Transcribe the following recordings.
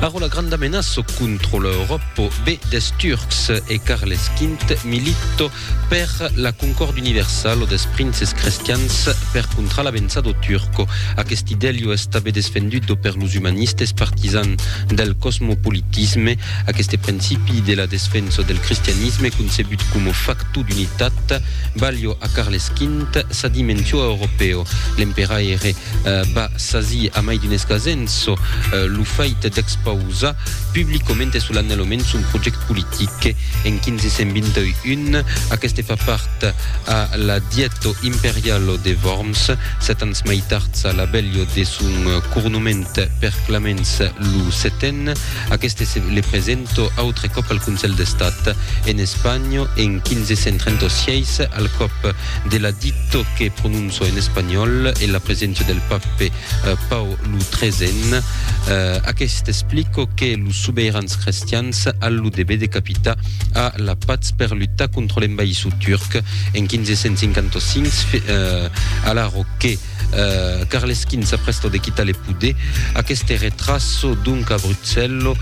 Arròla granda menaço contro l'Euròpo be des Turcs e Carles Quint milito per la concòrd universal o des princes crestians per contra la vença do Turco. Aqueste idèlio es tabé desfendut do per los humanistes partisans del cosmopolitisme. Aqueste principi de la desfenso del cristianisme concebut coma facto d'unitat balhò a Carles Quint sa dimensió europèo. L'emperaire va sasir amai d'un escasenço lo fait d'expausar publicament e solanelament son project politic en 1521. Aqueste fa part a la Dièto imperialo de Worms, sèt ans mai tards a la belio de son cornoument per Clamens lo Setèn. Aqueste se le presento autre còp al Consèl d'Estat en Espanha en 1536 al còp de la dito que prononça Çò en espanhòl e la preséncia del pape Pau lo XIII. Aqueste explico que los sobeirans crestians al lo deber de capitar a la patz per lutar contra l'envaïssor turc en 1555. Alaro que Carles V s'aprèsta de quitar le poder, aqueste retraço donc a Bruxello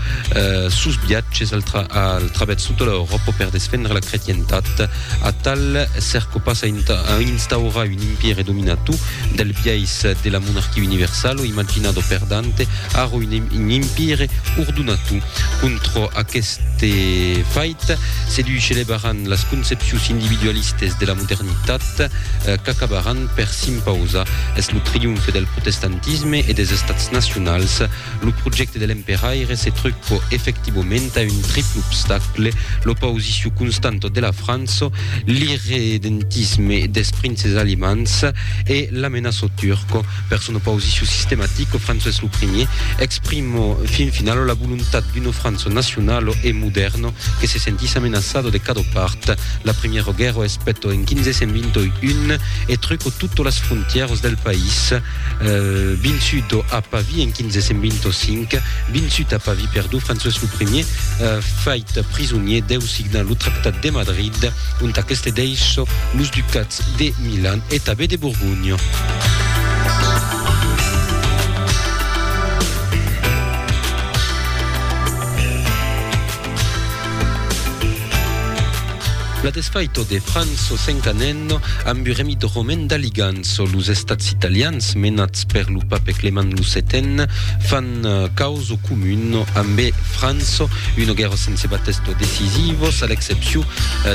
sos viatges al travèrs tota l'Euròpa per desfendre la cretientat. Atal cèrco pas a instaurar un impièri dominat tu del biais de la monarquia universal o imaginado per Dante aro un impièri ordonat tu. Contra aqueste fait se dui celebaràn las concepcions individualistes de la modernitat qu'acabaràn per s'impausar. Es lo triomfe del protestantisme e des estats nacionals. Lo projècte de l'emperaire se tròpo efectivament a un triple obstacle, l'opausiciu constanta de la França, l'irredentisme des princes alemands e l'amenaça turca. Per son opausiciu sistematica, François lo Primier exprima fin finala la volontat d'una França nacionala e modèrna que se sentís amenaçada de cada part. La Primièra Guèrra es pèta en 1521 e truca totas las frontièras del país. Binshut o a Pavie en 1525, binshut a Pavie per Duu François lo Primier, fait prisonier, deu signar lo Tractat de Madrid, ont aqueste dèish los ducats de Milan e tabé de Borgonha. La desfaito de Franzo Sencanenno amb un remit romen d'Aliganzo, los estats italians menats per lo pape Clement lo Setèn fan causo comun amb Franzo, uno guerro sense batesto decisivos a l'excepciu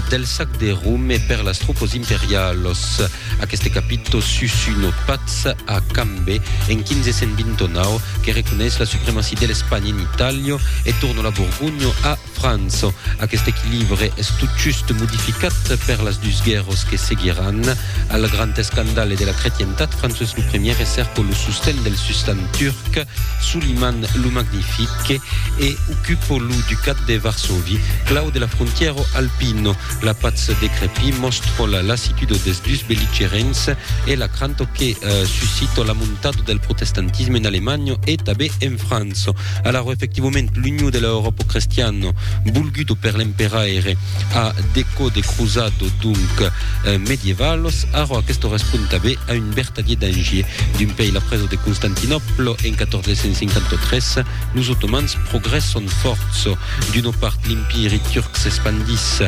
del sac de Rome per las tropas imperialos. Aqueste capito susu no patz a cambe en 1529 que reconeish la supremacy de l'Espanha en Itàlio e torno la Borgonho a França. Aqueste equilibre es totjust modificat per las dus guèrros que seguiràn. Al grand escandale de la cretientat, Francés lo Premier recerco lo sosten del sustan turc Suliman lo Magnifique e ocupo lo ducat de Varsòvi, clau de la frontièro alpino. La patz decrepit mòstro la lassitudo des dus belligerents e la cranto que suscito la montado del protestantisme en Alemanha e tabé en França. Alara efectivament l'unió de la Euròpa crestiana volgudo per l'emperaire a decò de cruzado donc medievalos, arrò aquesto respond tabé a un vertadier danger. D'un pei la presa de Constantinòpla en 1453, Los otomans progrèsson fòrts. D'una part l'Impiri turc s'espandís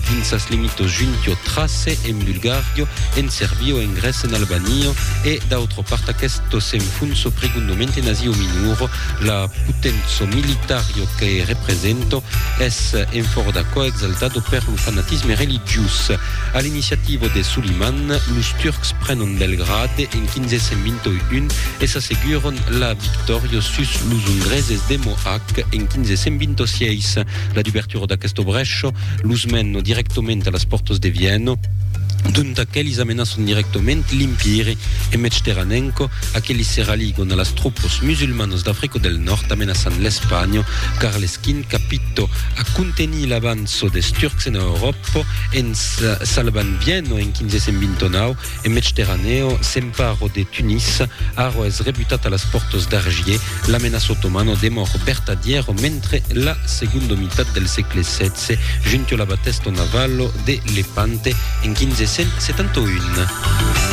dins sas limitos junt ò Trace en Bulgario, en Serbio, en Grèce, en Albania e d'autra part aquesto s'enfonso pregondament en Asia Minora. La poténça militària que representa es en fòra d'aquò exaltada per lo fanatisme religiós. A l'iniciativa de Suliman, los turcs prenon Belgrade en 1521 e s'asseguron la victòria sus los ungreses de Mohàc en 1526. La dubertura d'aquesta brecha los mena dirèctament a las pòrtas de Viena, d'ont aquelis amenaçan dirèctament l'Empire e mètge terranenca, aquelis se raligon a las tropas musulmanas d'Africa del Nòrd amenaçant l'Espanha. Carles V capita a contenir l'avança des Turcs ena Euròpa en salvant Viena en 1529, En Medsterranèo, s'emparo de Tunis, arro es rebutat a las pòrtas d'Argier, la menaça otomana demòr bertadièro mentre la segondo mitat del sègle xvi junto la batèsto navalo de Lepante en 1571.